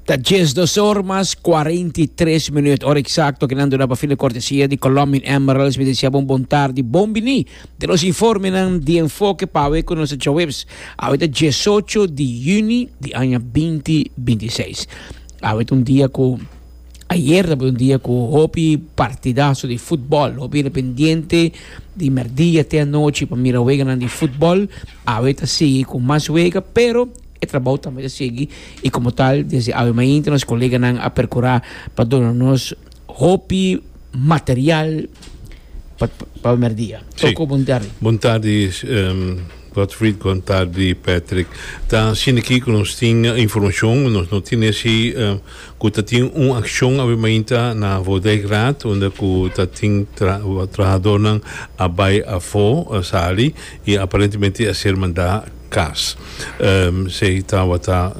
Ta dies dos or mas cuarenta y tres minuut. Hora exacto que nan duna pa fin de cortesia di Colombian Emeralds. Mi deseaba un bon tardi, bon bini. Te nos informenan di enfoke pa awe cu nos ta djaweps. Awe ta diesocho di juni di aña binti binti seis. Awe ta un dia cu, ayer tabata un dia cu hopi partidaso di futbol. Hopi independiente di merdia te anochi pa mira weganan di futbol. Awe ta sigui cu mas wega pero e trabao tambe ta sigui y como tal desde awe mainta nos coleganan a percura pa duna nos hopi material pa pa primer dia. Sí. Toko, bon tardi. Bon tardi Godfried, bon tardi Patrick. Ta asina aki cu nos tin informacion, nos no tin esi cu ta tin un accion awe mainta na Voudijkraat unda cu ta tin trahadornan a bay afo, a sali Y aparentemente e a ser manda cas. Esey tawata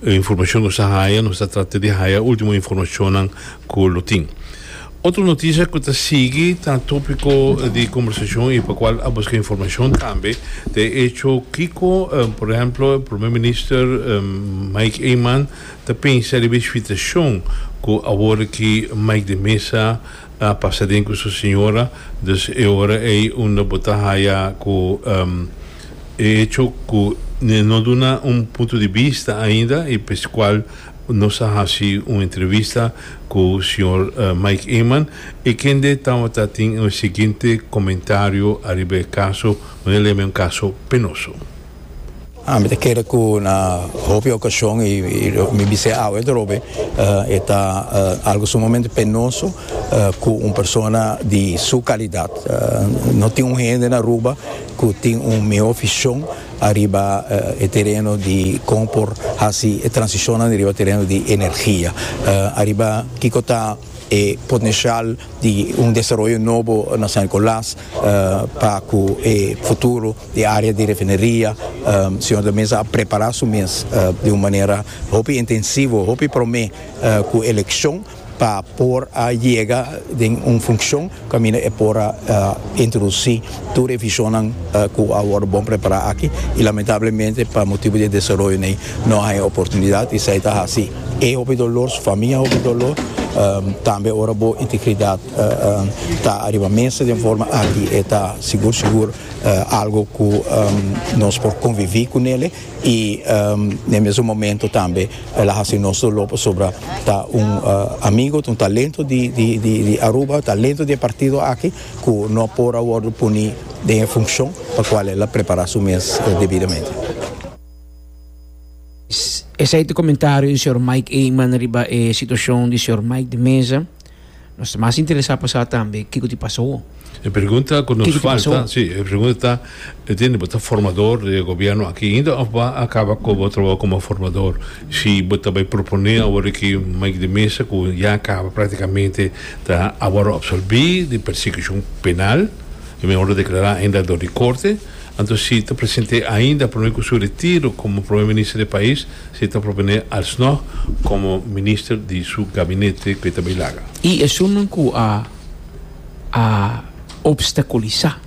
e informacion nos a haya. Nos ta trata di haya ultimo informacionnan cu lo tin. Otro noticia cu ta sigui ta topico di conversacion y pa cual a busca informacion tambe ta e hecho kico por ehemplo Primer Minister Mike Eman ta pensa riba e shfitacion cu awor aki Mike de Meza a pasa den cu su siñora, dus e ora ey unda bo ta haya cu e hecho cu ne no duna un punto di bista ainda y p'escual nos a haci un entrevista cu señor Mike Eman y kende tawata tin e siguiente comentario ariba e caso, manera ley men un caso penoso. Ami ta kere ku na hopi okashon i mi bis'é awe dorobe e ta algu sumamente penoso ku un persona di su kalidat. No tin un hende na Aruba ku tin un mihó vishon ariba e tereno di kon por hasi e transishonnan riba tereno di energia, ariba kiko ta e potenshial di un desaroyo nobo na San Nikolas. pa cu e futuro di area di refineria Señor ta mester a prepara su mes di un manera hopi intensivo, hopi prome cu eleccion pa por a yega den un funcion caminda e por a introduci tur e visionnan cu a worde bon prepara aki y lamentablemente pa motibo di e desaroyonan no a haya oportunidad y esai ta haci e hopi dolor, su famia hopi dolor tambe ora bo integridad. ta ariba mesa den forma aki e ta sigur sigur algo ku nos por konviví ku nele i den mesun momentu tambe el a hasi nos doló pasobra ta un amigo ta un talento di Aruba talento di e partido aki ku no por a wòrdu puni den e funshon pa kual el a prepará su mes debidamente. Esei ta komentario di señor Mike Eman riba e situashon di señor Mike di Meza. Nos ta mas interesá pa sa tambe kiko tin pasa awo. E pregunta ku nos falta, si, e pregunta ta, Mi tende bo ta formador di e gobièrnu aki ainda òf bo a kaba ku bo trabou komo formador? Si bo ta bai proponé awor di ki Mike di Mesa ku ya a kaba praktikamente ta awor apsorbí di persekishon penal, e mihó lo deklará ainda dor di korte, anto si ta present'é ainda promé ku su retiro komo promé minister di e pais, Si ta propone alsnog como minister di su gabinete cu e ta bay laga. Y esunnan cu a a obstaculiza,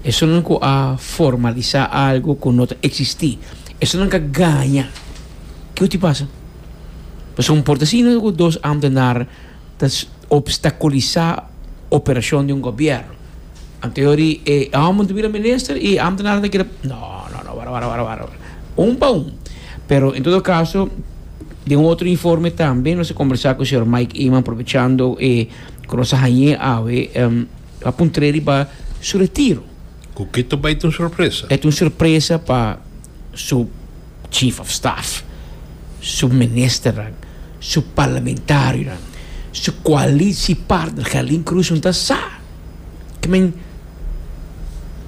esunnan cu a formaliza algo cu no ta existi, esunnan ca gaña. Kico tin pasa? Pasobra un Portesino cu dos ambtenar. Ta obstaculisá operacion di un gobierno. Anterior di e homber ta bira minister y e ambtenanan ta kere, no, no, no, wara, wara, wara, un pa un. Pero en todo caso, den un otro informe tambe nos a conversa cu señor Mike Eman, aprovechando e cu nos a hañ'é awe, a puntr'é riba su retiro. Cu kito bai ta un sorpresa? E ta un sorpresa pa su. Chief of Staff, su ministernan, su parlamentarionan, su coalitiepart-ner Gelin Cruz un ta sa ke men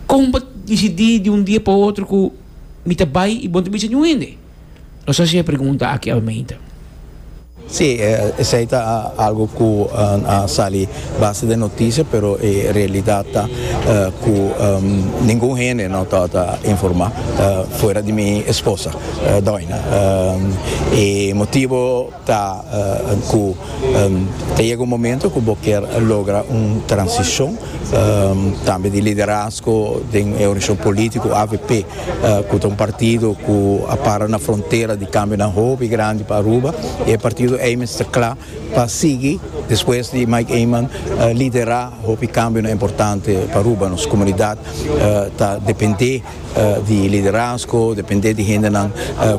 kon bo disidi di un dia pa otro ku mi ta bai i bon ta bisa niun hende? Nos hasi e pregunta aki almeinta. Sí, esei ta algu ku a sali base den notisia, pero e realidat ta ku ningun hende no ta ota informá fuera di mi esposa, doina. E motibu ta ku ta yega un momentu ku bo kier logra un transishon tambe di liderazgo den e oganisashon polítiko avp. Cu ta un partido cu a para na frontera di cambionan hopi grandi pa Aruba y e partido Eimans ta cla pa sigui despues di Mike Eman lidera hopi cambionan importante pa Aruba. Nos comunidad ta depende di e liderazgo, depende di hendenan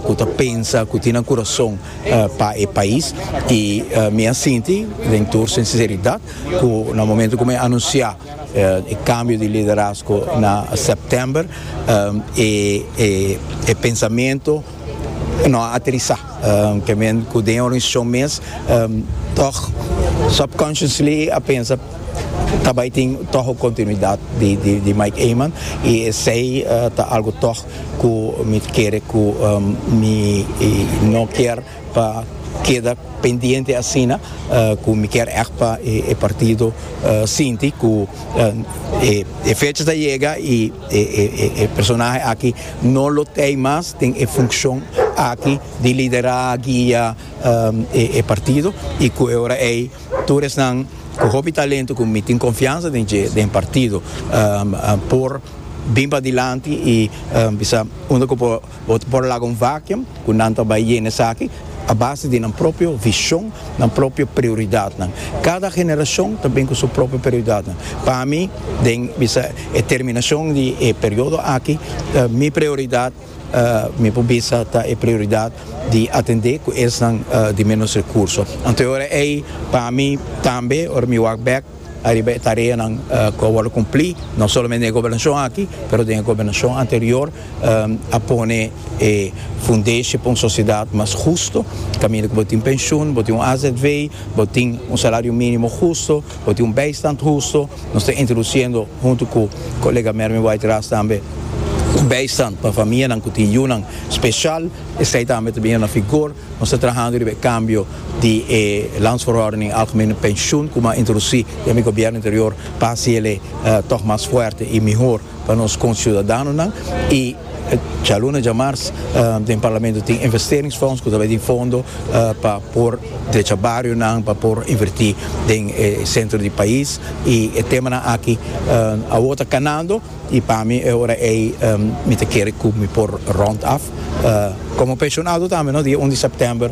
cu ta pensa, cu tin nan curason pa e pais y mi a sinti den tur sinceridad cu na momento cu mi a anuncia. E cambio di liderazgo na september e pensamento no a aterisa, ta men cu den e organisacion mes toch subconsciously a pensa ta bay tin toch un continuidad di Mike Eman y esey ta algo toch cu mi ta kere cu mi no kier. pa keda pendiente asina ku mi kier ègt pa e partido sinti ku e fecha ta yega i e personahe aki no lo tei mas den e funkshon aki di liderá, guia e partido i ku e ora ei tur esnan ku hopi talento ku mi tin konfiansa den dje den partido por bin padilanti i bisa unda ku por. Bo por laga un vacuum cu nan ta bay yena esaki a base di nan propio vision, nan propio prioridadnan. Cada generacion ta bin cu su propio prioridadnan. Pa mi, den bisa e terminacion di e periodo aki, mi prioridad mi por bisa ta e prioridad di atende cu esnan di menos recurso. Anto e ora ey pa mi tambe ora mi wak bek Ariba e tareanan cu a wordo cumpli, no solamente den e gobernacion aki, pero den e gobernacion anterior, a pone e fundeshi pa un sociedad mas husto, caminda cu bo tin pensioen, bo tin un azv, bo tin un salario minimo husto, bo tin un bijstand husto. Nos ta introduciendo, hunto cu colega Mervin Whiteraas tambe, un bijstand pa famianan cu tin yunan special, esey tambe ta bini na vigor. Nos ta trahando riba e kambio di e Landsverordening Algemene Pensioen ku bo a introdusí den mi gobièrnu anterior pa hasi el'e tòg mas fuerte i mihor pa nos konsiudadanonan. I djaluna djamars den Parlamento tin investeringsfonds ku ta bai tin fondo pa por drecha barionan, pa por invertí den e sentro di pais i e temanan aki awor ta kanando. Y pa mi e ora ey mi ta kere cu mi por rond af como pensionado tambe no, dia un di september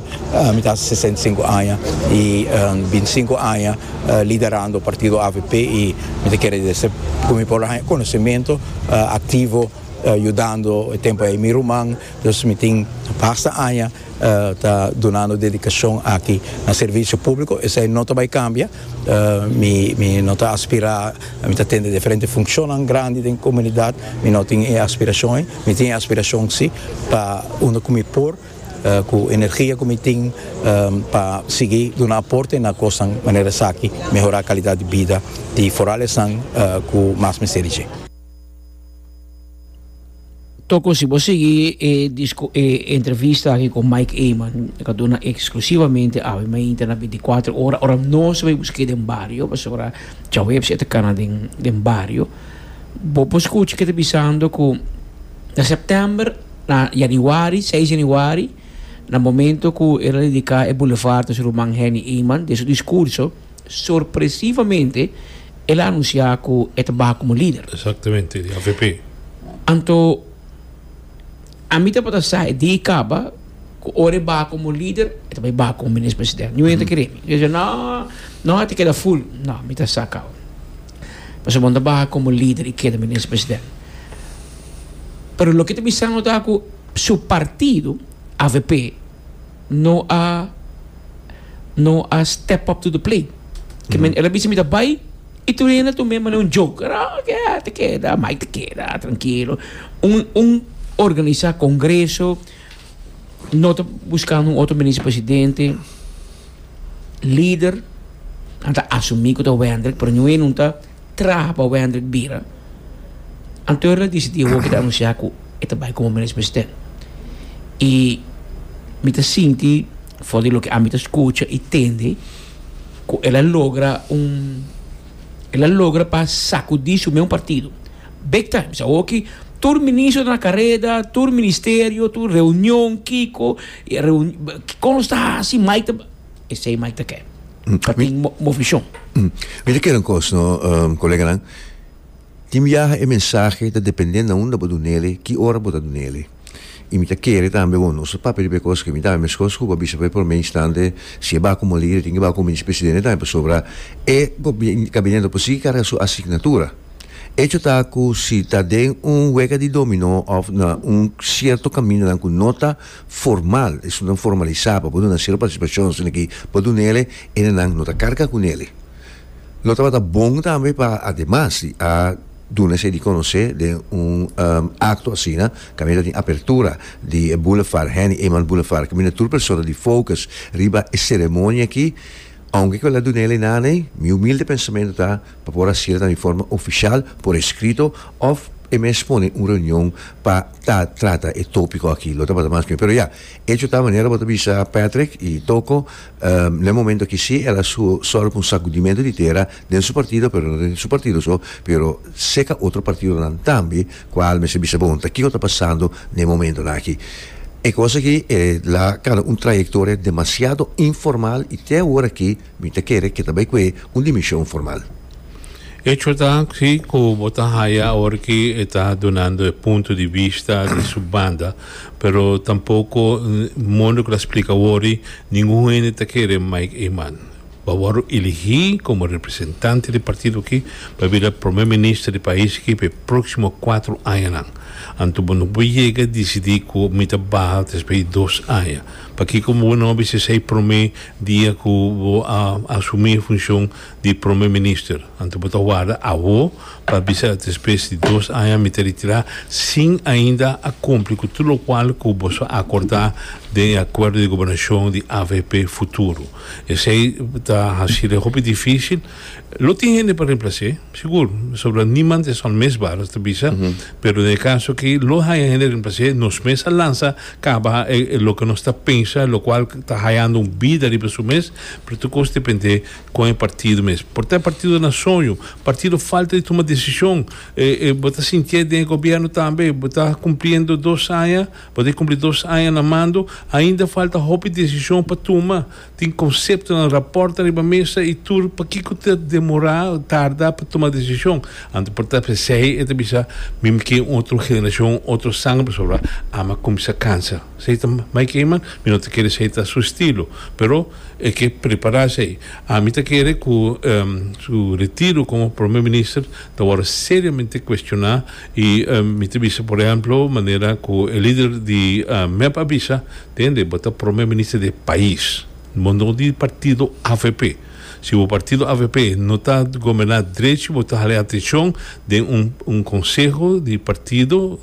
mi ta haci sesenta y cinco aña y binticinco aña liderando partido avp y mi ta kere esey cu mi por lo haya conocimiento activo yudando e tempo ey mi ruman, dus mi tin basta aña ta dunando dedicacion aki na servicio publico esey no ta bay cambia. Mi no ta aspirá, mi ta tende diferente funcionnan grandi den comunidad, mi no tin e aspiracion ei, mi tin e aspiracion si pa unda cu mi por, cu energia cu mi tin pa sigui duna aporte na cosnan manera esaki, mehorá calidad di bida di foral esnan cu mas mester di dje. Toko si bo sigui e disco e entrevista aki con Mike Eman e ta duna exclusivamente awe mei inter na binticuatro ora ora nos mei busqué den bario pasobra Chaueps e ta cana den den bario bo por scucha ke ta bisando cu na September na Januari seis Januari na momento cu el a dedica e boulevard a su ruman Henny Eman den su discurso Sorpresivamente el a anunsiá ku e ta baha komo lider. Exactamente, di avp. Anto ami tabata sa e dei kaba ku ora e baha komo lider e ta bai baha komo minis president. Niun e ta kere mi. E bisa no, no e ta keda ful. No, mi ta sa kau. Pasobra bo no ta baha komo lider i keda minis president. Pero loke e ta bisanu ta ku su partido, avp. no a no a step up to the plate ke men el a bisa mi ta bai y tur hende a tuma e manera un joke a ke a ta keda Mike ta keda trankilo un un organisa congreso no ta buskando un otro minister presidente lider nan ta asumi ku ta Wendrick pero niue nan ta. traha pa Wendrick bira, anto el a disidí hopi ta anunsiá ku e ta bai komo Minister Presidente. I mi ta sinti, for di loke ami ta skucha i tende, ku el a logra un el a logra pa sakudí su meun partido big time. Sa hoki tur ministro ta na kareda, tur ministerio, tur reunion, kiko, kon lo ta hasi, mai ta. Esei mai ta ke pa tin movishon. Mi ta kere un kos no, koleganan. Tin biaha e mensahe ta depende na unda bo dun n'ele, ki ora bo ta dun n'ele. I mi ta kere tambe, bon, nos ta papia riba e kos, ke mi ta haña meskos ku bo a bisa pa e promé instante, si e baku moli, e tin ke baku Minister Presidente tambe, pasobra e Gabineto por sigui karga su asignatura. Echo ta ku si ta den un wega di dominó òf na un sierto kamindanan ku no ta formal, esunnan formalisá pa por duna sero partisipashon sino ki pa duna el'e enenan no ta karga ku nele. Lo tabata bon tambe pa ademas di a duna esei di konosé den un akto asina kaminda ta tin apertura di e boulevard Henny Eman Boulevard kaminda tur persona di focus riba e seremonia aki, Aunke cu el a dun'el einan ei, mi humilde pensamentu ta pa por haci'l na mi forma oficial por escrito of e mes pone un reunion pa ta trata e topico aki. Lo tabata mas mi. Pero ya, hecho ta manera bo ta bisa Patrick y Toko, na e momento aki si el a solo cu un sacudimento di tera den su partido, pero no den su partido so, pero seca otro partidonan tambe, Kual mester bisa bon ta kiko ta pasando na e momentonan aki. E kos aki e la kaba un trayektoria demasiado informal i te awor aki mi ta kere ke ta bai kue un dimenshon formal. Echo ta si ku bo ta haya awor ki e ta dunando e punto di bista di su banda, pero tampoko modo ku ta splika wor di ningun hende ta kere Mike Eman. pa wordo elegí komo representante di partido aki pa bira Prome Minister di pais aki pa e próksimo kuater añanan. Anto bo no por yega disidí ku mi ta baha despues di dos aña. Pakiko bo no a bisa esei promé dia ku bo a asumí e funshon di Prome Minister? Anto bo ta warda awo pa bisa despues di dos aña mi ta retirá sin ainda a kumpli ku tur lokual ku boso a akordá den e Akuerdo di Gobernashon di avp Futuro? Esei ta hasi l'e hopi difícil. Lo tin hende pa reemplac'é, sigur, pasobra niemand es onmisbaar, nos ta bisa, pero den e caso aki lo haya hende reemplac'é, nos mes a lansa caba e loke nos ta pensa, locual ta hayando un bida riba su mes, pero tur cos depend'é con e partido mes. Por ta e partido na soño, partido falta di tuma decision, bo ta sinti'é den e gobierno tambe, bo ta cumpliendo dos aña, Pa tin kumpli dos aña na mando, ainda falta hopi desishon pa tuma. Tin konseptonan, rapòrtnan riba mesa i tur pakiko ta demorá, tarda, pa tuma desishon. Anto por ta esei e ta bisa, Mim ke un otro generashon, otro sanger pasobra ama a kuminsá kansa. Esei ta mai kei man, mi no ta kere esei ta su estilo. Pero e ke prepará esei. Ami ta kere ku su retiro komo Prome Minister ta wòrdu seriamente kuestioná. Y mi ta bisa por ehemplo manera cu e lider di mep a bisa, tende, bo ta Prome Minister di e pais, bo no di partido avp. Si bo partido avp no ta gobierna drechi bo ta hale atencion den un conseho di partido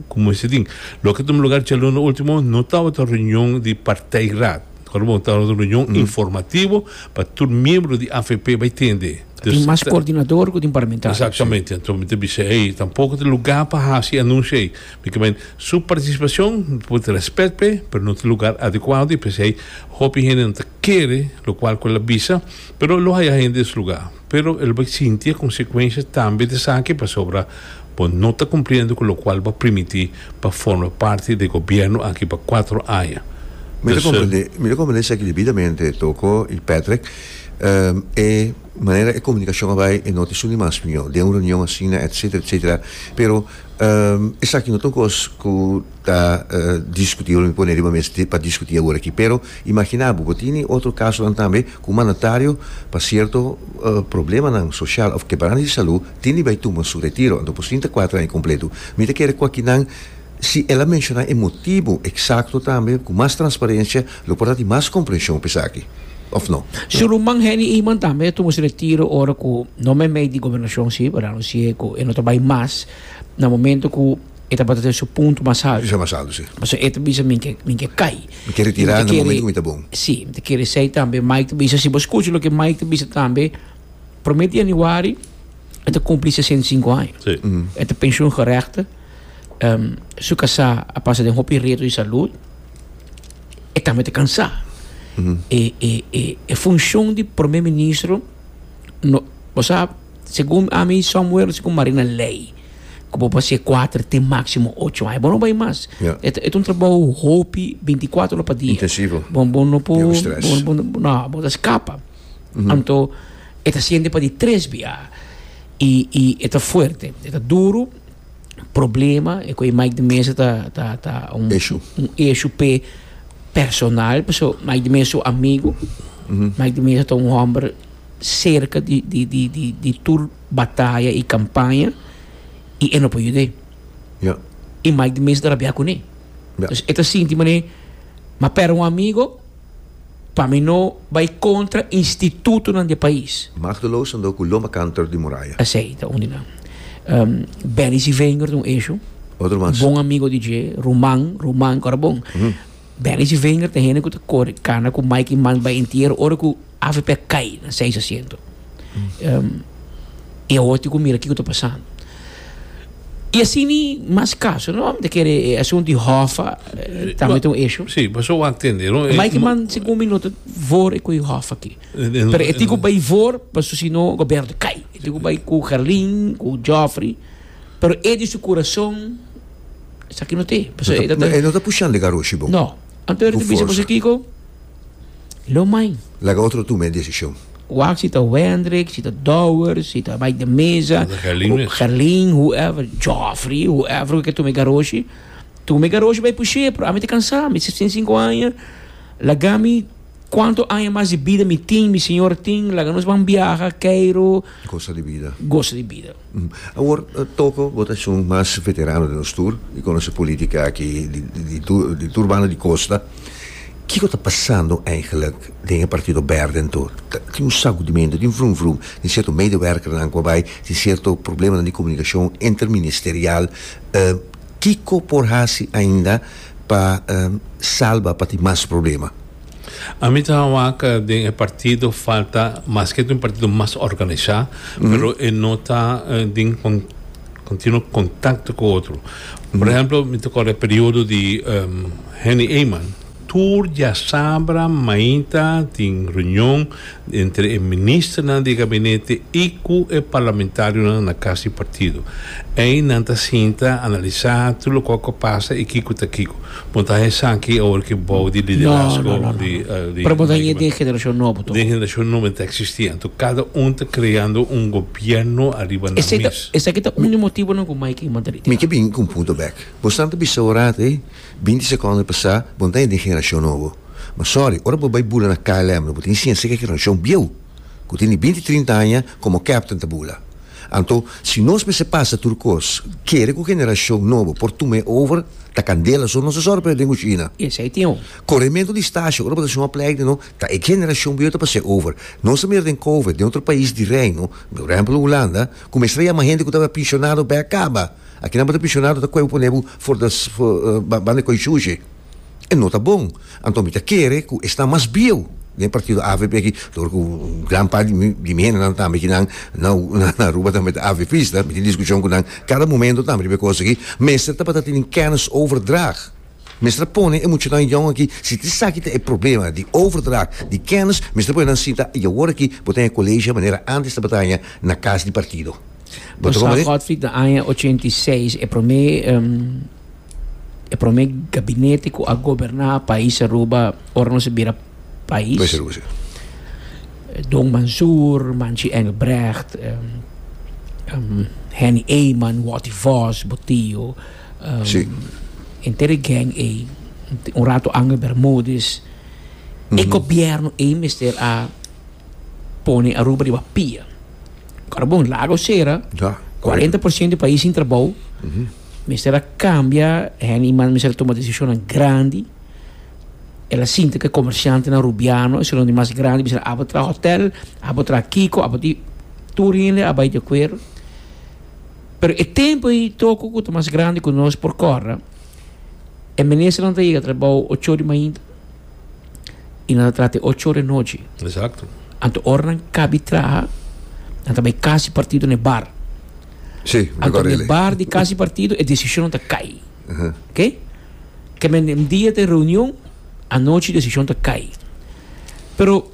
cu moe si tin. Loke tuma lugar djaluna ultimo no tabata reunion di partij raad, tabata un reunion informativo pa tur miembro di avp bay tende. Tin mas coordinador cu tin parlamentario. Exactamente. Enton mi ta bisa ey tampoco ta lugar pa haci anuncio ey. Mi ta men su participacion mi por ta respet p'e pero no ta lugar adecuado y p'esey hopi hende no ta kere locual cu el a bisa pero lo haya hende den su lugar pero el bai sinti e consecuencia tambe di esaki pasobra bo no ta cumpliendo cu locual bo a primiti pa forma parti di e gobierno aki pa cuatro aña. Mi ta comprende mi ta comprende esaki debidamente Toko y Patrick. E manera e comunicacion a bay e no ta suni mas miyo den un reunion asina etcetera etcetera pero esaki no ta un cos cu ta discuti olo mi pone riba mes pa discuti awor aki pero imagina bo bo tini otro casonan tambe cu un mandatario pa cierto problemanan social of quebranta di salud tindi bay tuma su retiro anto por sinta cuatro aña completo mi ta kere cu aki nan si el a menshona e motibu eksakto tambe, ku mas transparensia lo por ta di mas komprenshon pa esaki, òf no? Suluman Henny Eman tambe tumo su retiro ora ku no meimei di gobernashon si por anunsi'é ku e no ta bai mas na momento ku e tabata den su punto mas haltu. Sa mas haltu, si. Pasobra e ta bisa mi ke mi ke kai. Mi ke retirá na momento ku mi ta bon. Si, mi ta kere esei tambe. Mike ta bisa si bo skucha loke Mike ta bisa tambe. Promé di januari e ta kumpli 65 aña. Sí. E ta pensioen geregte. Em, su kasá a pasa den hopi reto di salud. E tambe ta kansá. E, e, e, e funshon di promé ministro, no, bo sa, segun ami, Samuel, segun Marina, lei, ku bo pa se kuater te máksimo ocho aña. Bo no bai mas. Ja. E ta e ta un trabou hopi, 24 ora pa dia. Intensivo. Bon, bon no por. Niun stress. Bon, bon, no, bo ta skapa. Anto e ta siente pa di tres bia y y e ta fuerte, e ta duro, problema e cu e Mike de Mesa ta ta ta un Issue. un issue pe personal, paso Mike de Mesa su amigo, Mike de Mesa ta un homber cerca di di di di di tur bataya y campaña y e no por yud'e Ja. y Mike de Mesa ta rabia cune, Ja. dus e ta sinti mane ma perde un amigo. Pa mi no bai kontra institutonan di e pais. Machteloos ando cu loma kanter di muraya. Esey ta un di nan. Benny Sivenior ta un esho. Otro mas. Bon amigo di dje, ruman, ruman, ku ora bon. Benny Sivenior ta hende ku ta kore kana ku Mike Iman bai entiero ora ku. Avp a cay na seis asiento y awor tin cu mira kico ta pasando. Y así ni mas caso no? Ta kere e asunto di Hoffa tambe ta un issue? Sí, pasobra bo a tende, no? E. Mike man segun mi no ta voor cu e Hoffa aki. Pero e tin cu bay voor pasobra si no gobierno ta cay. E tin cu bay cu Gerlin, cu Geoffrey, pero e di su curazon esaki no ta e. Pasobra e ta. E no ta pushando e garroshi bo. No. Anto era ta bisa boso kico? Lo mai. Laga otro tuma e decision. Wak si ta Wendrick, si ta Dowers, si ta Mike de Meza, Gerlin, whoever, Joffrey, whoever cu ke tuma e garoshi, tuma e garoshi bay pushe, pero ami ta cansa, mi sesenta i sinku aña, lagami cuanto aña mas di bida mi tin, mi señor tin, laga nos ban biaha, Cairo, Gosa di bida. Awor toko bo ta shon mas veterano den nos tur y conoce politica aki di tur banda di costa, kico ta pasando eigenlijk den e Partido Berde tur? Tin un sacudimento, tin vrum vrum, tin cierto medewerkernan cu a bay, tin cierto problemanan di comunicacion inter ministerial, kico por haci ainda pa salba pa tin mas problema? Ami ta wak den e partido falta maske ta un partido mas organisá pero e no ta den continuo kontakto ku otro por ehemplo mi ta akorda e periodo di Henny Eyman tur diasabra mainta tin reunion. entre e ministernan di e gabinete i ku e parlamentarionan na Kas di Partido. Ei nan ta sinta, analisá tur loke ku a pasa i kiko ta kiko. Bo ta haña esaki awor ku e bou di liderazgo di Mike Mangui. Den generashon nobo e ta eksistí anto kada un ta kreando un gobièrnu ariba nan mes. Mi ke bini ku un punto bèk. Bo san ta bisa ora ei. Binti sekondo di pasá, bo no ta hende di e generashon nobo. Ma sòri, ora bo bai bula na KLM lo bo ta hini siña sek e generashon bieu ku tene binti, trinta aña komo kèpten ta bula. Anto, si nos mester pasa tur kos, kere ku generashon nobo por tum'é over ta kandela so nos ta sòri pa e den ku Shina. Esei tin un. Korementu di stasio, ora bo ta shon aplèk di no, ta e generashon bieu ta pas'é over. Nos ta mira den kove, den otro pais di Reino, por ehèmpel Hulanda, ku mester a yama hende ku tabata pinshonado bèk kaba. Aki nan bo ta prisionado ta kue bo pone bo for de ban de koi sushi e no ta bon anto mi ta kere ku esnan mas bieu den partido avp aki tur ku gran part di mi hende nan tambe ki nan na Aruba tambe ta avpista mi tin diskushon ku nan kada momento tambe riba e kos aki mester tabata tene kennis over drag mester a pone e muchanan yon aki si ta esaki ta e problema di over drag di kennis mester a pone nan sinta y awor aki bo ta hen e colegio manera antes tabatin na kas di partido. Bo ta Sa comprende? Godfrey na aña 86, e promé em, e promé gabinete ku a goberná país Aruba ora nos a bira Pues país. Aruba, sí. Don Mansour, Manchi Engelbrecht, em, em, Henny Eman, Watty Vos, bo tio, em, Sí. enter e gang ei, t- un rato Angel Bermudez. E gobierno ei mester a pone Aruba riba pia. Kòrbon, lago sera, kuarenta por siento di pais sin trabou, mester a kambia hende i mester a tuma desishonnan grandi, el a sinti ku e komersiantenan rubiano e sunan di mas grandi bisera abo traha hòtèl, abo traha kiko, abo di, tur hende a bai di akuerdo, pero e tempu ei toko ku ta mas grandi ku nos por kòrda e ministernan ta yega trabou ocho di mainta. y nan ta traha te ocho ora e nochi. Exacto. Anto ora nan cabi traha, nan ta bay casi partido ne bar. Sí, Anto ne bar di casi partido e decisionan ta cay. Uh -huh. Ok? Que men en dia te reunion, anochi decision ta cay. Pero,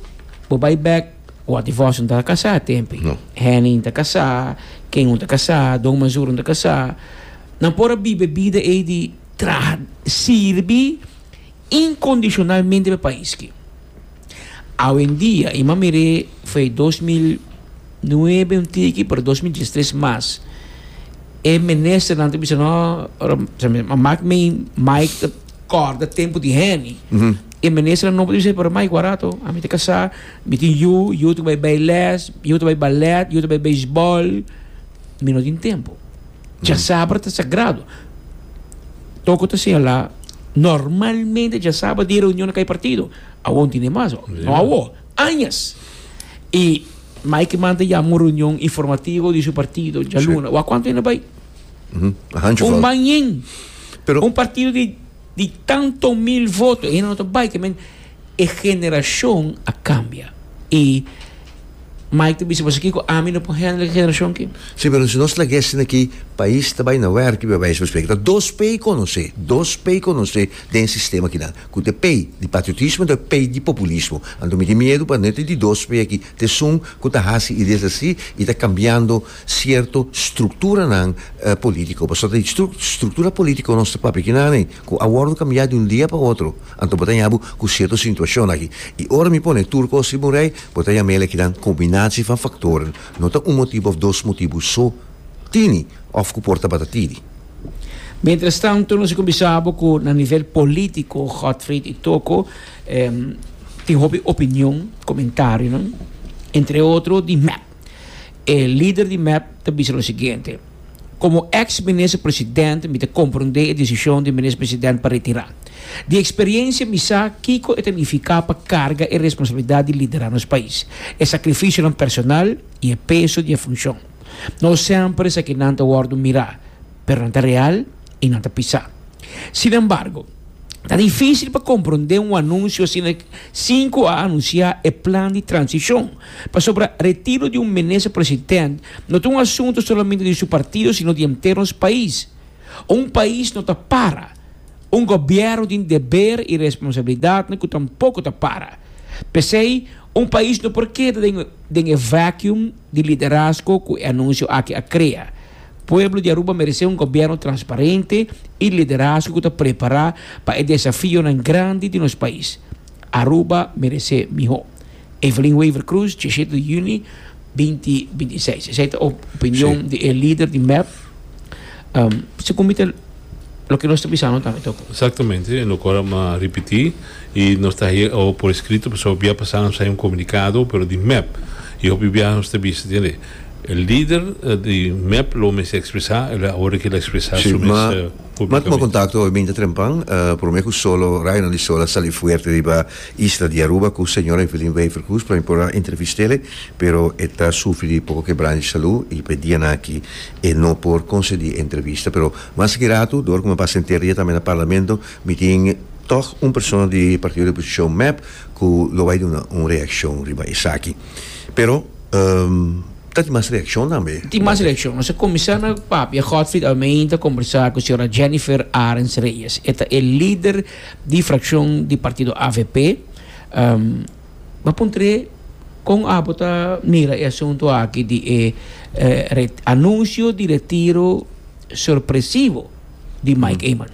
bo bay back, wat divorcio ta casa tempi. No. Henny ta casa, Ken un ta casa, Don Mazur un ta casa. Nan por bibe bida e di traha, sirbi, Incondicionalmente pa pais ki. Awendia y ma mir'é fue dos mil nuebe un tiki pero dos mil diestres mas e ministernan ta bisa no a mak mi Mike ta corda tempo di Henny e ministernan nobo ta bisa pero Mike wak rato ami ta casa mi tin yu yu ta bai bai les yu ta bai ballet yu ta bai beisbal. Mi no tin tempu. Djasabra ta sagrado. Toko ta señalá, normalmente djasabra di reunion kay partido. Awor no tin den basa. No awor, añas. I Mike Mann ta yama un reunion informativo di su partido djaluna. Wa kuantu hende bai? Un man yen. Un partido di. Di tanto mil voto e hende no ta bai ke men e generashon a kambia i Mike ta bisa pasobra kiko ami no por hendel e generashon aki? Sí, pero si nos lagu'é asina aki, pais ta bai na wèrkio bai bai speak ta dos pei konosé, dos pei konosé den sistema kinan, ku ta e pei di patriotismo i ta e pei di populismo. Anto mi tin miedu pa no e ta di dos pei aki, ta esun ku ta hasi ideas así i ta kambiando. sierto strukturanan politiko. Pasobra ta di struktura politiko nos ta papia kinami ku a wòrdu kambiá di un dia pa otro. Anto bo ta yabu ku sierto situashon aki. I ora mi pone tur kos riba un rei, bo ta yam'el e kinan kombinasio van faktor, no ta un motibu òf dos motibu so tini òf ku por tabata tidi. Mientras tanto nos a kuminsá bo ku na nivel politiko Godfried i Toko tin hopi opinion, komentarionan, entre otro di mep. E lider di mep ta bisa lo siguiente, Komo èks minister president, mi ta komprondé e desishon di minister president pa retirá. Di eksperiensia mi sa kiko e ta nifiká pa karga e responsabilidat di liderá nos pais, e sakrifisionan personal i e peso di e funshon. No semper esakinan ta wòrdu mirá, pero nan ta real i nan ta pisá. Sinembargo. Ta difísil pa komprondé un anunsio asina sinku a anunsiá e plan di transishon. Pasobra retiro di un minister president no ta un asuntu solamente di su partido sino di henter nos pais. Un pais no ta para. Un gobièrnu tin deber i responsabilidatnan ku tampoko ta para. P'esei un pais no por keda den e vacuum di liderazgo ku e anunsio aki a krea. Pueblo di Aruba meresé un gobierno transparente y liderazgo cu ta prepará pa e desafionan grandi di nos pais. Aruba meresé mihó. Evelyn Wever Croes, Diecisiete di Juni, binti binti i seis. Esei ta opinion di e lider di mep. Según mi ta. loke nos ta bisa no tambe toko. Exactamente, e no kor a ripiti y nos ta haye awo por escrito pasobra hopi bia pasa nos a haye un comunicado pero di mep y hopi bia nos ta bisa tende e lider di mep lo mester expresa el a ora ki el a expresa su mes publicamente. Si, ma tuma contacto hoy binte trempan, prome cu solo Raynan di Sola sali fuerte riba isla di Aruba cu señora Evelyn Wever-Croes, prome por a entrevistele pero e ta sufri di poco kebranta di salud y p'e dianan aki E no por konsedi entrevista pero mas ki ratu dor ku mi a pasa henter dia tambe na parlamento mi tin tòg un persona di partido di oposishon mep ku lo bai duna un reakshon riba esaki pero ta tin mas reakshon tambe. Tin mas reakshon nos a kuminsá na papia Godfrid Almein ta kombersá ku señora Jennifer Arens Reyes e ta e lider di frakshon di partido avp. M'a puntr'é, Kon abo ta mira e asuntu aki di e anunsio di retiro sorpresivo di Mike Eman?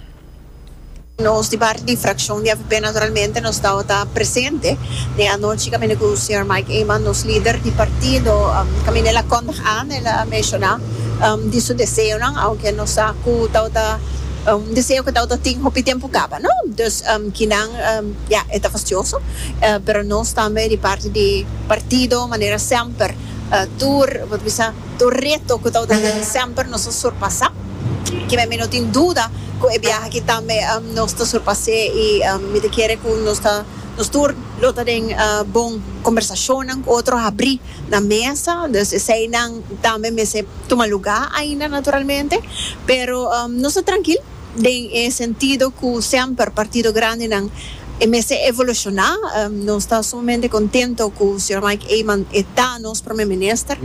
Nos di parti di frakshon di avp naturalmente nos tabata presente den anochi kaminda ku señor Mike Eman, nos lider di partido, kaminda el a kondig an, el a menshoná di su deseonan, ounke nos sa ku tabata un deseo ku tabata tin hopi tempu kaba, no? Dus kinan. Ya, e ta fastioso, pero nos tambe di parti di partido manera semper tur bo ta bisa tur reto ku ta unda nan semper nos a surpasá. Kiba mi no tin duda ku e biaha aki tambe nos ta surpas'é i mi ta kere ku nos ta nos tur lo ta den bon kombersashonnan ku otro habrí na mesa, dus eseinan tambe mester tuma lugá ainda naturalmente, pero nos ta trankil. Den e sentido cu semper partido grandenan e mester evoluciona, nos ta sumamente contento cu Señor Mike Eman e ta nos Prome Minister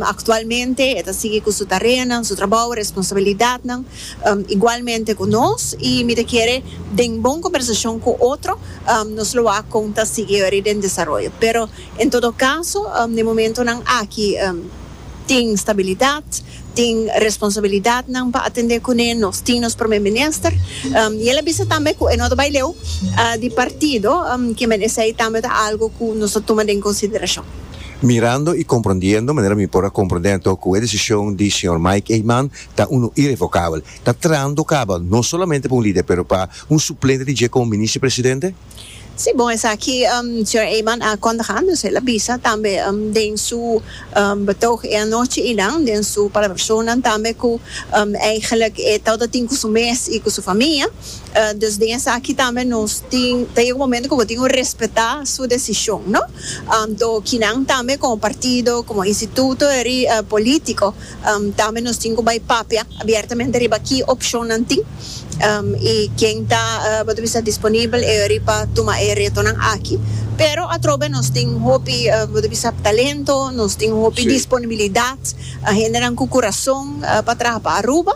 actualmente, e ta sigui cu su tareanan, su trabou, responsabilidadnan igualmente cu nos y mi ta kere den bon conversacion cu otro nos lo a con ta sigui ori den desaroyo. Pero en todo caso den momentonan aki tin stabilidad. tin responsabilidadnan pa atendé kuné, nos tin nos Promé Minister i el a bisa tambe ku e no ta bai leu di partido, ke men esei tambe ta algu ku nos ta tuma den konsiderashon. Mirando i komprondiendo manera mi por a komprondé anto ku e desishon di señor Mike Eman ta unu irevokabel, ta trando kaba no solamente pa un lider pero pa un suplente di dje komo Minister Presidente? Si bon esaki señor Eman a kondig andos el a bisa tambe den su betog e anochi y nan den su palabracionnan tambe cu eigenlijk e tawata tin cu su mes y cu su famia dus den esaki tambe nos tin ta yega un momento cu bo tin cu respeta su decision no to kinan tambe como partido como instituto eri politico Tambe nos tin cu bay papia abiertamente riba ki opcionnan tin y ken ta bo ta bisa disponibel riba tuma e retonan aki. Pero atrobe nos tin hopi bo ta bisa talento, nos tin hopi disponibilidad, hendenan cu curazon pa traha pa Aruba.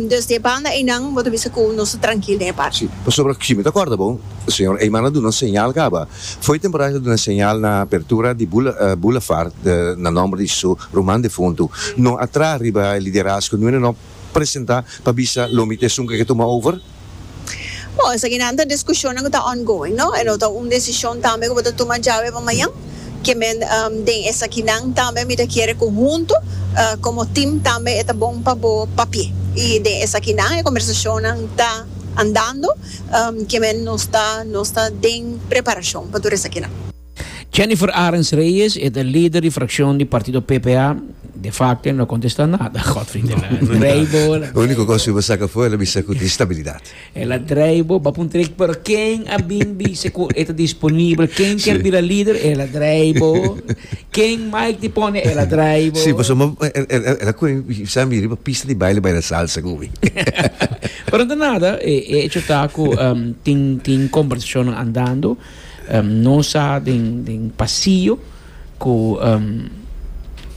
Dus den e banda eynan bo ta bisa cu nos ta trankil den e parti. Si, pasobra si mi ta corda bo, señor Eyman a duna un señal caba. Fo'i temporada el a duna e señal na apertura di Boulevard na nomber di su Ruman defuntu no a traha riba e liderazgo nuene no presenta pa bisa lomi ta esun ku e ke tuma over? Bo, esakinan ta diskushonnan ku ta ongoing, no? E no ta un desishon tambe ku bo ta tuma djawe pa mañan. Ke men den esakinan tambe mi ta kere ku huntu komo tim tambe e ta bon pa bo papia. I den esakinan e kombersashonnan ta andando, ke men nos ta nos ta den preparashon pa tur esakinan. Jennifer Arens Reyes e ta lider di frakshon di partido PPA, de facto e no a kontestá nada, Godfrey de la drei bo el a Uniko kos ku i bo saka afó, el a bisa ku tin stabilidat. El a drei bo, bo a puntra el, pero ken a bin bisa ku e ta disponibel? Ken ker Si. bira lider? El a drei bo. Ken Mike di pone? El a drei bo. Si, pasobra el el el a kore i sa mira i pa pista di baile baila salsa ku mi. Pero no ta nada, e hecho ta ku tin tin kombersashonnan andando. Nos sa den pasillo cu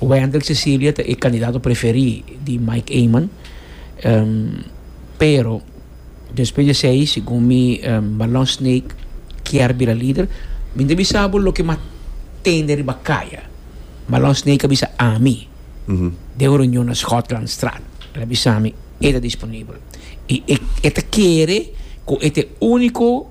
Wendell Cecilia ta e candidato preferi di Mike Eman, pero despues di esey segun mi Marlon Snake kier bira lider. Mi ta bisa bo loke mi a tende riba caya, Marlon Snake a bisa ami den un reunion na Schotlandstraat, el a bisa mi e ta disponibel y e ta kere cu e ta e unico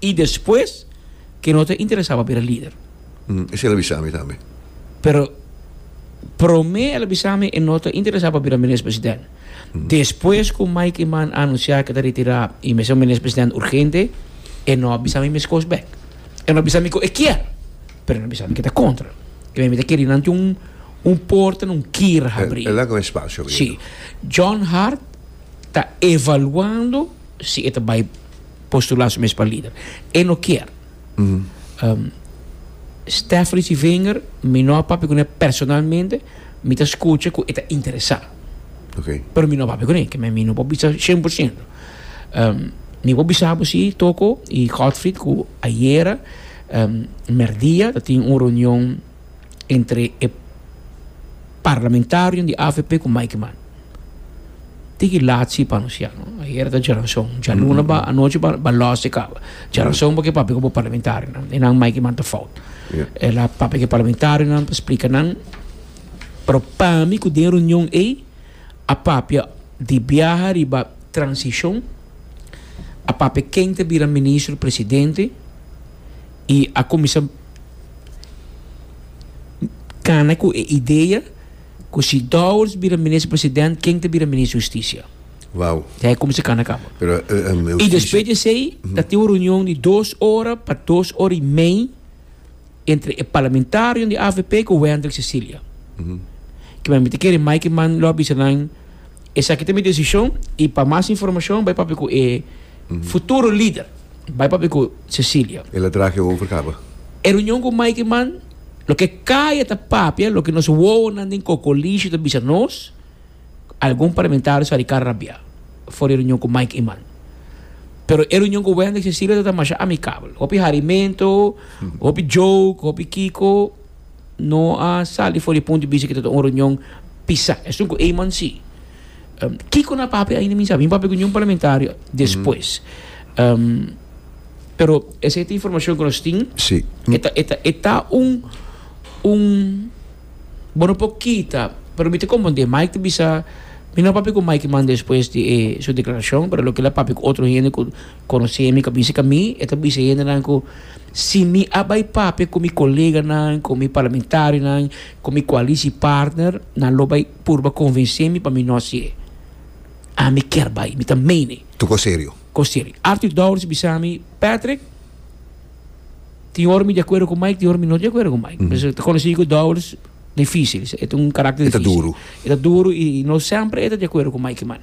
y despues ke no ta interesa pa bira lider. Esei el a bisa mi tambe. Pero prome el a bisa mi e no ta interesa pa bira Minister President. Despues ku Mike Eman a anunsia ke ta retira y mester un Minister President urgente, e no a bisa mi meskos bek. E no a bisa mi ku e kier, pero e no a bisa mi ke ta kontra. E bisa mi ta keri nan tin un un porta, un kier habri. El a laga un espasio. Si. John Hart ta evaluando. si e ta bai postula su mes pa lider. E no kier. Stephanie Civinger, mi no a papia cu ne personalmente, mi ta scucha cu e ta interesa. Okay. Pero mi no a papia cu ne, keme mi no por bisa cien por ciento. mi por bisa bo si, Toko y Godfried, cu ayera, merdia, ta tin un reunion, entre e parlamentarionan di avp ku Mike Mann. Tin ki laatsi pa anunsiá no. Ayera ta djaranson. Djaluna ba anochi ba ba lòs e kaba. Djaranson porque papia ku bo parlamentarionan. E nan Mike Mann ta fout. Ya. El a papia ku e parlamentarionan pa splika nan. Pero pa mi ku den reunion ei a papia di biaha riba transishon, a papia ken ta bira ministro presidente i a kuminsá kana ku e idea ku si Dowers bira Minister President ken ta bira Minister Hustisia. Wow. Ya e kuminsá kana kaba. Pero i despues di esei ta tin un reunion di dos ora pa dos ora i mei entre e parlamentarionan di avp ku Wendrick Cecilia. Kiman mi ta kere mai ki man lo a bisa nan Esaki ta mi desishon i pa mas informashon bai papia ku e futuro lider. Bai papia ku Cecilia. El a traha ke over kaba. E reunion ku Mikey man, loke kaya ta papia, loke nos wowonan den Kokolisio ta bisa nos, algun parlamentario sa di kara rabia for di e reunion ku Mikey man. Pero e reunion ku Wendy i Cecilia ta ta masha amikabel. Hopi harimento, hopi joke, hopi kiko. no a sali for di punto di bista ki ta ta un reunion pisá. Esun ku Eman si. Um, kiko na papia ainda mi sabi. Mi papia ku niun parlamentario despues. Um, pero esa e informacion ku nos tin. Sí. E ta, e ta, e ta un, un, bo no por kita, pero mi ta comprende. Mike ta bisa, mi no a papia ku Mike man despues di e su declaracion, pero loke el a papia ku otro hende ku, Conoce mi, ca bizi ca mi, e ta bizi hendenan cu si mi a bay papia cu mi coleganan, cu mi parlamentarionan, cu mi coalicipartner, nan lo bay purba convence mi pa mi no haci e. Ami kier bay, mi ta mene. Tu con serio? Con serio. Arthur Dowders bisa mi, Patrick, tin ora mi di acuerdo cu Mike, tin ora mi no di acuerdo cu Mike. Pasobra ta conoci cu Dowders dificil, e ta un caracter dificil. E ta duro. E ta duro y no semper e ta di acuerdo cu Mike, mane.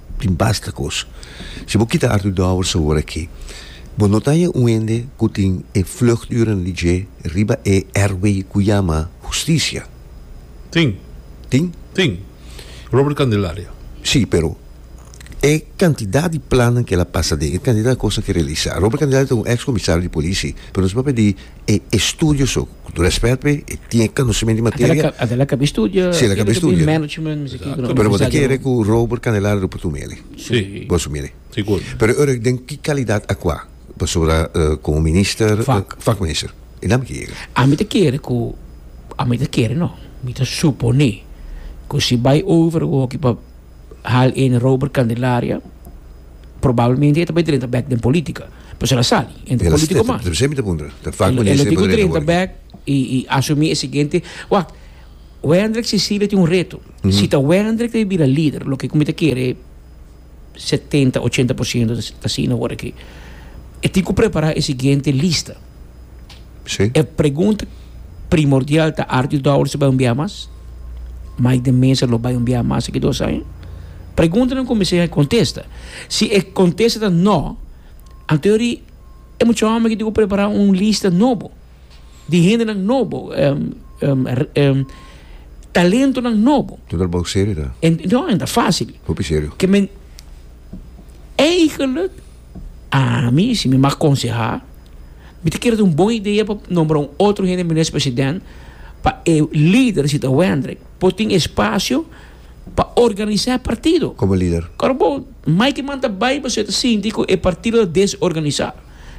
tin basta kos. Si bo kita artu dòbel sabor akí, bo no ta haña un hende ku tin e vluchturen di dje riba e airway ku yama hustisia. Tin. Tin? Tin. Robert Candelaria. Sí, pero e kantidat di plannan ku el a pasa den, e kantidat di kos nan ke realisá. Robert Candelaria ta un ex komisario di polisi, pero nos papia di e estudio su ku tur respet pe e tin konosementu di materia Ata la kabi estudio si la kabi estudio management pero bo ta kere ku Robert Candelara rupu tur mele bo su mele pero ora den ki kalidat a kua pasobra komo minister fak minister e nan mi ke yega ami ta kere ku ami ta kere no mi ta supone ku si bai over woki pa Hal Ene Robert Candelaria probablemente e ta bay drenta bek den politica pasobra el a sali entre Ela politico mas ta semi ta puntra ta fak el a tin ku drenta bek i i asumi e siguiente wak Wendrick Cecilia tin un reto si ta Wendrick ta bira lider loke ku mi ta kere setenta ochenta por ciento ta asina ora aki e tin ku prepara e siguiente lista. Sí. E pregunta primordial ta Arthur Dowers bai un biaha mas? Mike de Mesa lo bai un biaha mas aki dos aña? Preguntanan cu mester hay contesta. Si e contesta ta no, anto yori e mucha homber aki debe prepara un lista nobo di hendenan nobo, talentonan nobo. Tin ta bou serio ta. No, no ta facil. Hopi serio. Ke men eigenlijk Ami, si mi mag konsehá, mi ta kere ta un bon idea pa nombra un otro hende Minister President pa e lider, si ta Wendrick, por tin espacio pa organisá e partido. Komo lider. Ora bo Mike man ta bai pasobra e ta sinti ku e partido ta desorganisá.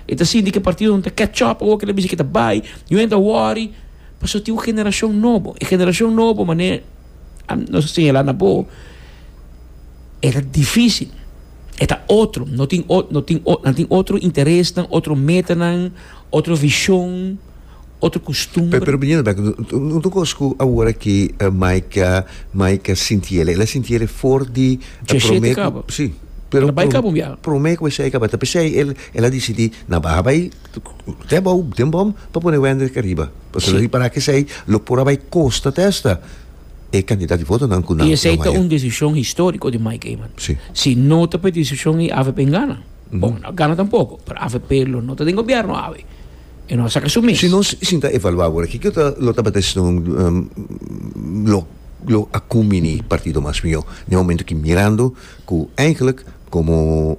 E ta sinti ku e partido no ta catch up awor ku e ta bisa ku e ta bai. Yu a yenta wòri pasobra tin un generashon nobo. E generashon nobo manera nos a señalá na bo e ta difísil. E ta otro, no tin o, no tin o, nan tin otro interesnan, otro metanan, otro vision, otro costumbre. Pero biña ta bek, un cos cu awora ki Maika, Maika sinti el, el a sinti el e for di Diecisiete prome, cabo. si, pero El a bai cabo un biaha. prome cu esey a caba ta pesey el, el a dicidi na baha bai te abao, den bom pa pone Wendrick ariba, pasobra Yes. ripará cu esey lo por a bai costa ta esta. e candidat di votonan cu nan lo maya. Y esey ta un decision historico di Mike Eman. Si. Si no ta pa e decision y avp gana, bon, no a gana tampoco, pero avp lo no ta den gobierno awe. E no a saca su mes. Si nos sinta evalua awor aki, kico lo tabata esnan lo a cumini partido mas mihor? Na e momento ki mirando. Cu eigenlijk como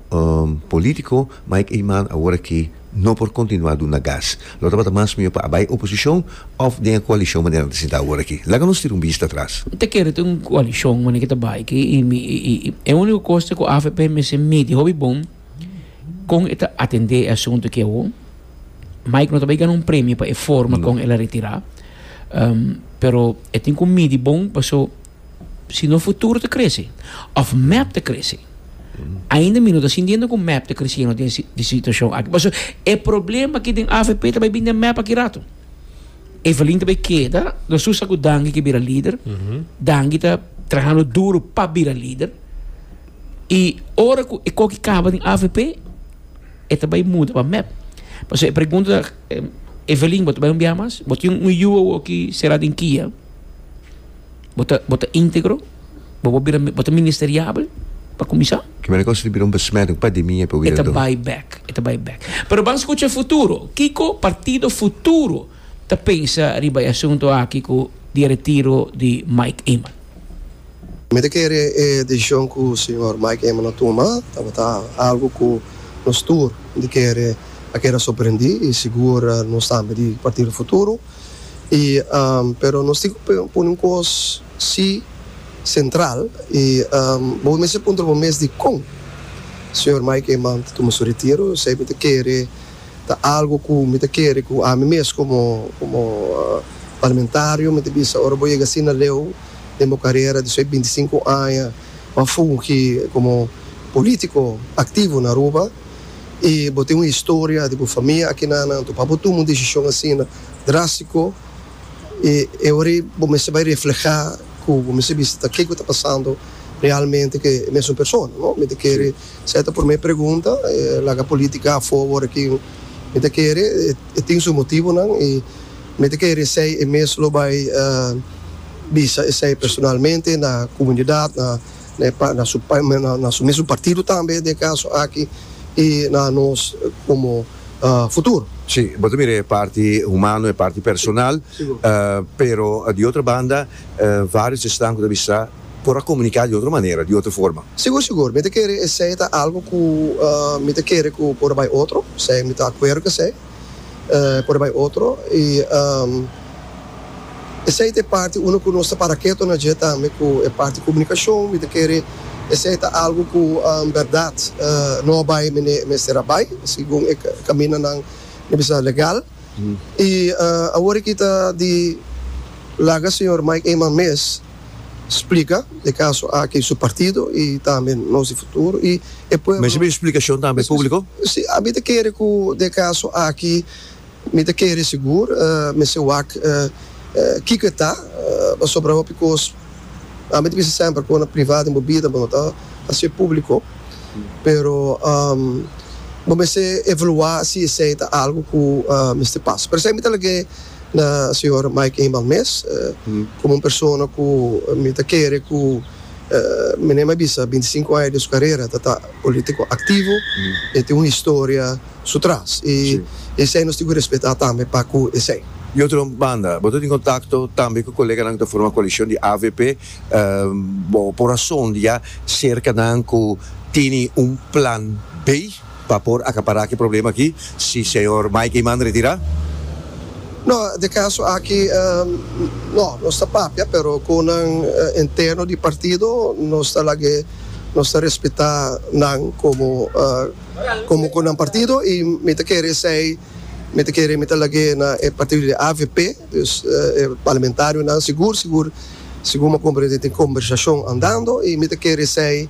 politico Mike Eman awor aki no por continua duna gas. Lo tabata mas mijo pa a bay oposicion of den e coalicion manera nan ta sinta awor aki. Laga nos tira un bista atras. Mi ta kere ta un coalicion manera ki ta bay aki y mi e unico cos ta cu avp mester midi hopi bon con e ta atende e asunto aki awo. Mike no ta bay gana un premio pa e forma con el a retira pero e tin cu midi bon paso. Si no futuro ta crece of mep ta crece. Ainda mi no ta sintiendo cu mep ta creciendo den di situacion aki. Paso e problema aki den avp ta bay bini den mep aki rato. Evelyn ta bay keda, nos tur sa cu Dangi ke bira lider. Dangi ta trahando duro pa bira lider. Y ora cu e coki caba den avp e ta bay muda pa mep. Paso e pregunta ta Evelyn bo ta bay un biaha mas? Bo tin un yu awoki sera den kia? Bo ta bo ta íntegro? Bo bo bira bo ta ministeriabel pa kuminsá? Ki manera ku a sirbi na un besmèt, un pademia pa wira do? E ta bai bèk, e ta bai bèk. Pero ban skucha futuro. Kiko Partido Futuro ta pensa riba e asuntu aki ku di e retiro di Mike Eman? Mi ta kere e desishon ku señor Mike Eman a tuma tabata algu ku nos tur di kere a keda sorprendí i sigur nos tambe di Partido Futuro. i pero nos tin cu pone un cos si central i bo mester puntra bo mes di con Señor Mike Eman ta tuma su retiro esey mi ta kere ta algo cu mi ta kere cu ami mes como como Parlamentario mi ta bisa ora bo yega asina leu den bo carera di su binti sinku aña bo a fungi como politico activo na Aruba. i bo tin un historia di bo famia aki na nan, to pa bo tuma un desishon asina drastiko, i e ora ei bo mester bai reflehá ku bo mester bisa ta ke ku ta pasando realmente ku e mesun persona, no? Mi ta kere se ta promé pregunta, e laga polítika afó wòrdu aki, mi ta kere e tin su motibunan i mi ta kere esei e mes lo bai bisa esei personalmente na komunidat, na. e pa na su na su mesun partido tambe den e caso aki y na nos como futuro. Si, bo ta mira e parti humano, e parti personal, pero di otro banda varios esnan cu ta bisa por a comunica di otro manera, di otro forma. Sigur, sigur, mi ta kere esey ta algo cu mi ta kere cu por a bay otro, sea mi ta acuerdo cu esey. por bai otro y esey ta e parti uno cu nos ta para keto na dje tambe cu e parti comunicacion mi ta kere esey ta algo cu berdad no a bai mi mester a bai segun e caminanan mi bisa legal y awor aki ta di laga señor Mike Eman mes. splika e kaso aki su partido i tambe nos di futuro i e pueblo. Mester bin splikashon tambe publiko? Si, mi ta kere ku den kaso aki mi ta kere sigur mester wak kiko e ta pasobra hopi kos ami ta bisa semper ku na priva den bo bida bo no ta hasié publiko pero bo mester evaluá si esei ta algu ku mester pasa pero esei mi ta lag'é. Na señor Mike Eenmaal mes, komo un persona ku mi ta kere ku mene mi a bisa binti sinku aña di su karera ta ta polítiko aktivo, e tin un historia su tras i esei nos tin ku respetá tambe pa ku esei. Di otro banda, bo ta tin kontakto tambe ku koleganan ku ta forma koalishon di avp. Bo por a son di ya serka nan ku tene un plan B? pa por acapará ki problema aki si Señor Mikey manda retirá. No, de caso aki no, nos ta papia pero cu nan interno di partido nos ta lag'e, nos ta respeta nan como como cu nan partido y mi ta kere esey, mi ta kere mi ta lag'e na e partido di avp, dus e parlamentarionan sigur sigur sigur mi a comprende tin conversacion andando y mi ta kere esey.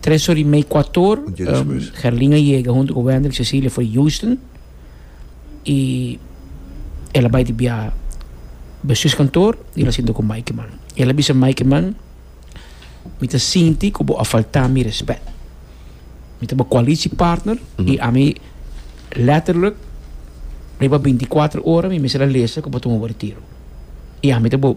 Tres or i mei, kuator, Gerlin a yega huntu ku Wendel Cecilia for Houston i el a bai di biaha Besus kantoor i el a sinta ku Mikey man. El a bisa Mikey man, Mi ta sinti ku bo a falta mi respet. Mi ta bo koalishi partner i ami letterlijk riba binti kuater ora mi mester a lesa ku bo tuma bo retiru. I ami ta bo.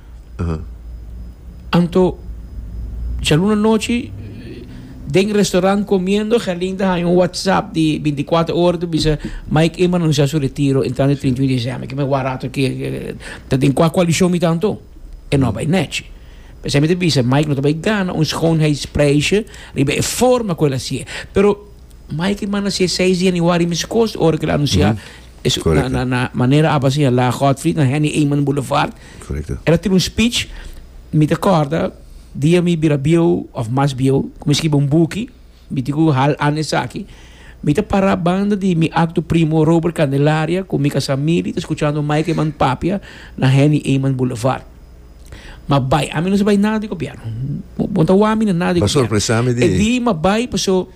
Anto, djaluna nochi, den restaurant comiendo, Gerlin ta haya un WhatsApp di binticuater ora ta bisa, Mike Eman anuncia su retiro entrando e trinta i un di diciember. Ke mi a wak rato aki, ta den cua coalition mi ta anto? E no a bay nechi. P'esei mi ta bisa, Mike no ta bay gana un schoonheidsprijsje riba e forma cu el a haci'e. Pero, Mike Eman a haci e seis di januari miskos ora cu el a anuncia, na manera aba señala Godfrey, na Henny Eman Boulevard. Correcto. El a tin un speech, mi ta corda dia mi bira bieu of mas bieu cu mi scribi un buki, mi tin cu hal ana esaki, mi ta para banda di mi acto primo Robert Candelaria cu mi casa Milly ta scuchando Mike Eman Papia na Henny Eman Boulevard. Ma bay, ami no sa bay nada di gobierno, bo no ta wamina nada di gobierno. E di ma bay paso.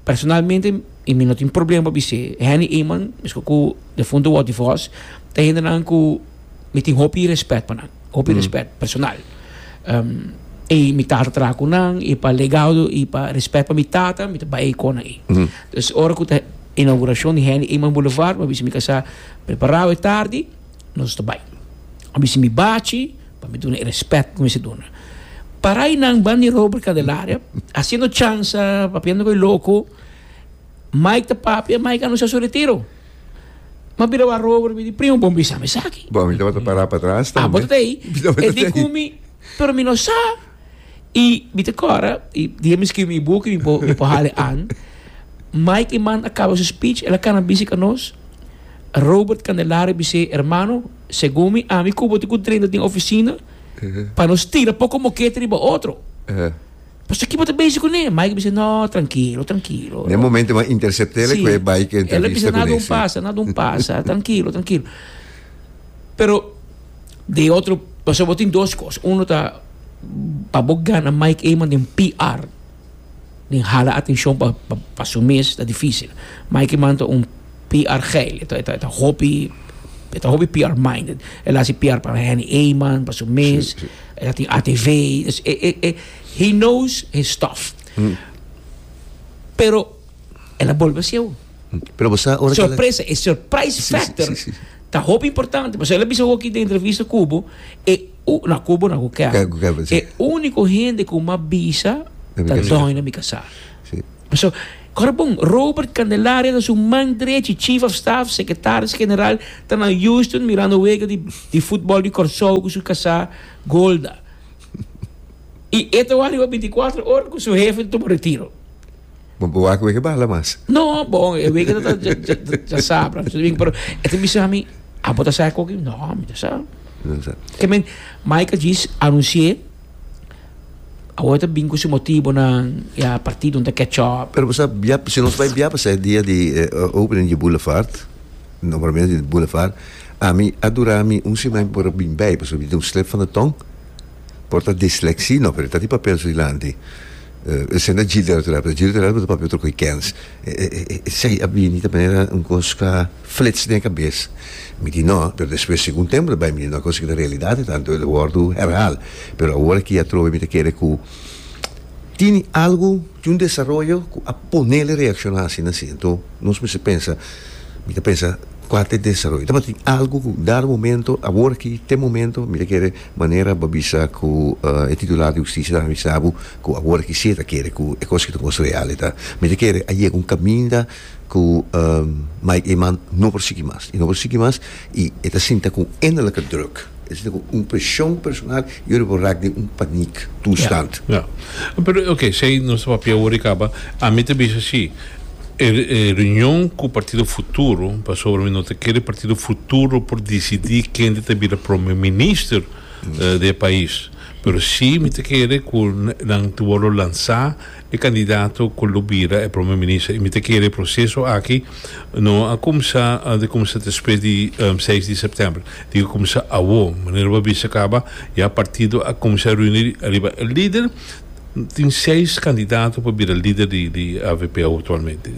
Personalmente y mi no tin problema pa bis'é Henny Eman meskos ku defunto Walty Fos ta hendenan ku mi tin hopi respèt pa nan hopi respèt personal e mi tata traha ku nan y pa legado y pa respèt pa mi tata mi ta bai kon nan dus ora ku ta inaugurashon di Henny Eman Boulevard mi a bisa mi kasa prepará e tardi nos ta bai a bisa mi bachi. Pa mi duna e respet ku mi si duna. Para i nan ban di Robert Candelaria, hasiendo chansa, papiando ku e loko. Mike ta papia, Mike a anunsá su retiro. Mi a bira wak Robert, mi di, Primo, bo bisa mi esaki. Bo mi tabata pará patras tambe. Abo ta ta ei. Mi tabata ta ei. E di ku mi, Pero mi no sa. I mi ta kòrda, i dia mi skirbi mi buki, mi por mi por hala e an. Mike Eman a kaba su speech, el a kana bisi ku nos, Robert Candelaria bis'é, Hermano, Segun mi, ami ku bo tin ku drenta tin ofisina pa nos tira poko mokete riba otro. Pasobra ki bo ta bezi kuné? Mike a bisa, No, trankilo, trankilo. Den e momentu bo a intersept'é el ku e bai ku e entrevista kuné. Si, el a bisa, Na dun pasa, na dun pasa, trankilo, trankilo. Pero den e otro, pasobra bo tin dos kos. Uno ta pa bo gana Mike Eman den PR. Bin hala atenshon pa pa su mes ta difísil. Mikey man ta un PR geil. E ta e ta e ta hopi e ta hopi PR minded. El a hasi PR pa Henny Eman, pa su mes. Sí, sí. El a tin ATV. Dus e e e he knows his stuff. Pero el a bolbe hasieu. Pero bo sa ora ke el a- Sorpresa, e surprise Sí, sí, factor sí, sí. ta hopi importante. Pasobra el a bisa hoki den entrevista ku bo e na cubo na cu kèber e unico hende cu m'a bisa ta doño mi casa so ora bon Robert Candelaria ta su man drechi chief of staff secretaris general ta na Houston mirando wega di football di Corsou cu su casa Golda y e ta wak riba binti cuatro ora cu su hefe ta tuma retiro. Bo bo wak wege bala mas. No, bon, e wege ta ja ja ja sa pra su ding, pero e ta bisa ami, a bo ta sa e koki? No, mi ta sa. No sa. Ke men Michael Djis anunsié awor e ta bin ku su motibonan i a partido ta catch up. Pero bo sa bia si nos bai bia pasá e dia di e opening di Boulevard, nombramiento di Boulevard, ami a dura mi un simen pa por a bin bai pasobra mi tin un slip van de tong. Por ta dislexia no pero e ta di papel su dilanti esei no ta djiri tera otro lado pero djiri otro lado pero ta papia otro kens esei a bini ta manera un kos ka flits den e kabes mi di no pero despues si un tempo ta bai mi di no e kos aki ta realidad e tanto lo wordu herhaal pero awor aki atrobe mi ta kere ku tini algu tin un desaroyo ku a ponele reacciona asina si enton nos mester pensa mi ta pensa kual ta e desaroyo tabatin algu ku dado momento awor aki te momento mi ta kere. Manera a bisa ku e titular di hustisia ta avisa bo ku awor aki si e ta kere ku e kos ki ta kos real e ta mester kere a yega un kaminda ku Mike Eman no por sigui mas i no por sigui mas i e ta sinta ku un innerlijke druk e ta sinta ku un preshon personal i ora e por raak den un paniek toestand. Pero oke esei nos ta papia awor i kaba ami ta bisa si E reunion cu Partido Futuro, pasobra mi no ta kere Partido Futuro por dicidi kende ta bira Prome Minister di e pais, pero si mi ta kere cu nan ta wordo lansa e candidato cu lo bira e Prome Minister, y mi ta kere e proceso aki no a cumsa ta cumsa despues di seis di September, tin cu cumsa awo, manera bo a bisa caba, ya Partido a cumsa runi riba e lider. Tin seis candidato pa bira lider di avp actualmente.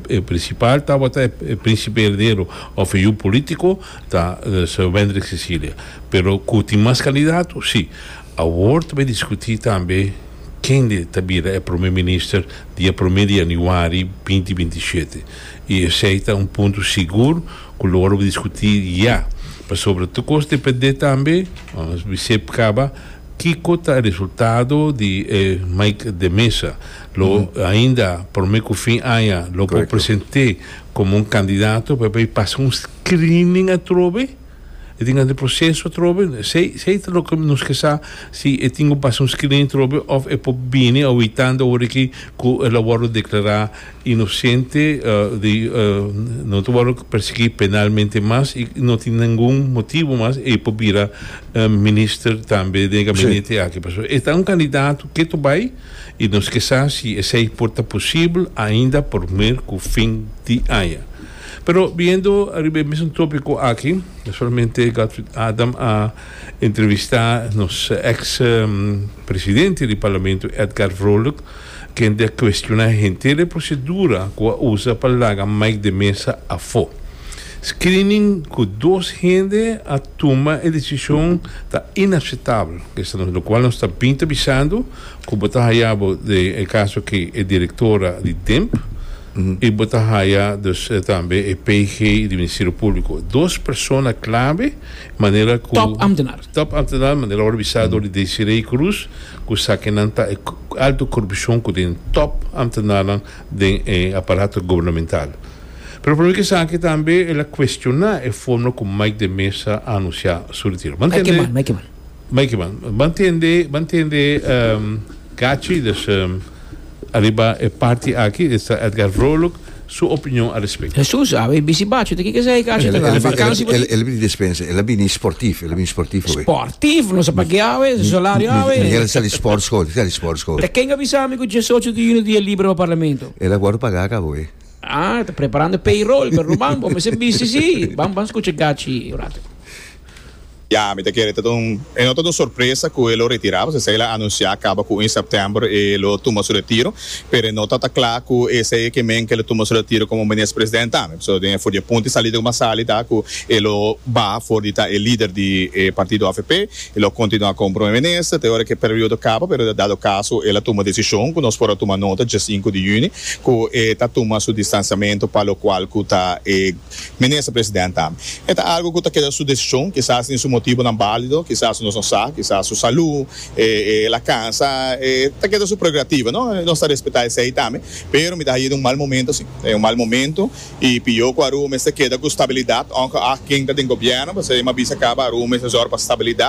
E principal tabata e Principe Heredero of e yu politico ta Sir Wendrick Cecilia. Pero cu tin mas candidato? Si. Awor ta bay discuti tambe kende ta bira e Prome Minister di e prome di Januari binti binti shete. Y esey ta un punto sigur cu lo wordiscuti ya. Pasobra tur cos depende tambe, mos bay sep caba. Kiko ta e resultado di e Mike de Mesa, lo ainda prome ku fin aña lo por present'é komo un kandidato pa e bai pasa un screening atrobe? E tin hasi proseso atrobe? Esei ta loke nos ke sa si e tin ku pasa un screening atrobe òf e por bini awitando ora aki ku el a wòrdu deklará Inosente di no ta wòrdu persiguí penalmente mas i no tin ningun motibu mas e por bira minister tambe den e gabinete aki. Pasobra e ta un kandidato ke ta bai i nos ke sa si esei por ta posibel ainda promé ku fin di aña. Pero biniendo ariba e mesun tópiko aki, solamente Godfried Adam a entrevistá nos èks presidente di Parlamento Edgar Vrolijk, Kende a kuestioná henter e prosedura ku a usa pa laga Mike de mesa afó? Screening ku dos hende a tuma e desishon ta inaksetabel, esta nos lokual nos ta bin ta bisando ku bo ta haya bo de e kaso ke e direktora di Demp i bo ta haya dus tambe e PG di Ministerio Públiko, dos persona klave manera ku Top ambtenar. Top ambtenar manera ora bisá dor di Desiree Cruz. Cu sakinan ta e alto corupcion cu tin top ambtenaarnan den e aparato gubernamental? Pero pa mi cu esaki tambe el a cuestiona e forma cu Mike de Meza a anuncia su retiro. Bo ntende? Mike Eman. Bo ntende, bo ntende Gachi, dus, ariba e parti aki, esta Edgar Vrolijk, su opinion a respecto. Hesus a bay bisi bachu ta kiko esey ay cacho ta dal vakansi pa ti? El a bini despensa, el a bini sportief, el a bini sportief awe. Sportief? No sa pa ke awe, su salario awe. Mi Miguel a sali sport school, ta sali sport school. Ta ken a bisa mi ku diesocho di yuno dia libre pa parlamento? El a wordo paga ka awe. Ah, ta preparando payroll, perdon man, bo mester bisi si. Ban, ban scucha gachi un rato. Ya, mi ta kere. E no ta un sorpresa ku e lo retirá, pasobra esei el a anunsiá kaba ku un sèptèmber e lo tuma su retiro, pero e no ta ta kla ku esei e ke men ke lo tuma su retiro komo Minister Presidente tambe, pasobra den e for di e punto e salida kuma sali ta ku e lo baha for di ta e lider di e partido avp, e lo kontinuá komo Prome Minister te ora ku e periodo kaba, pero dado kaso el a tuma desishon ku nos por a tuma nota dje sinku di yüni ku e ta tuma su distansiamentu pa lokual ku ta e Minister President a. E ta algo cu ta keda su decision, kisas tin su motibonan balido, kisas nos no sa, kisas su salu, e el a cansa, e ta keda su prerogativa, no? Nos ta respeta esey tambe, pero mi ta haye den un mal momento si, den un mal momento, y pio cu Aruba mester keda cu stabilidad, onge a ken ta den Gobierno, pasobra e m'avisa caba Aruba mester zorg pa stabilidad.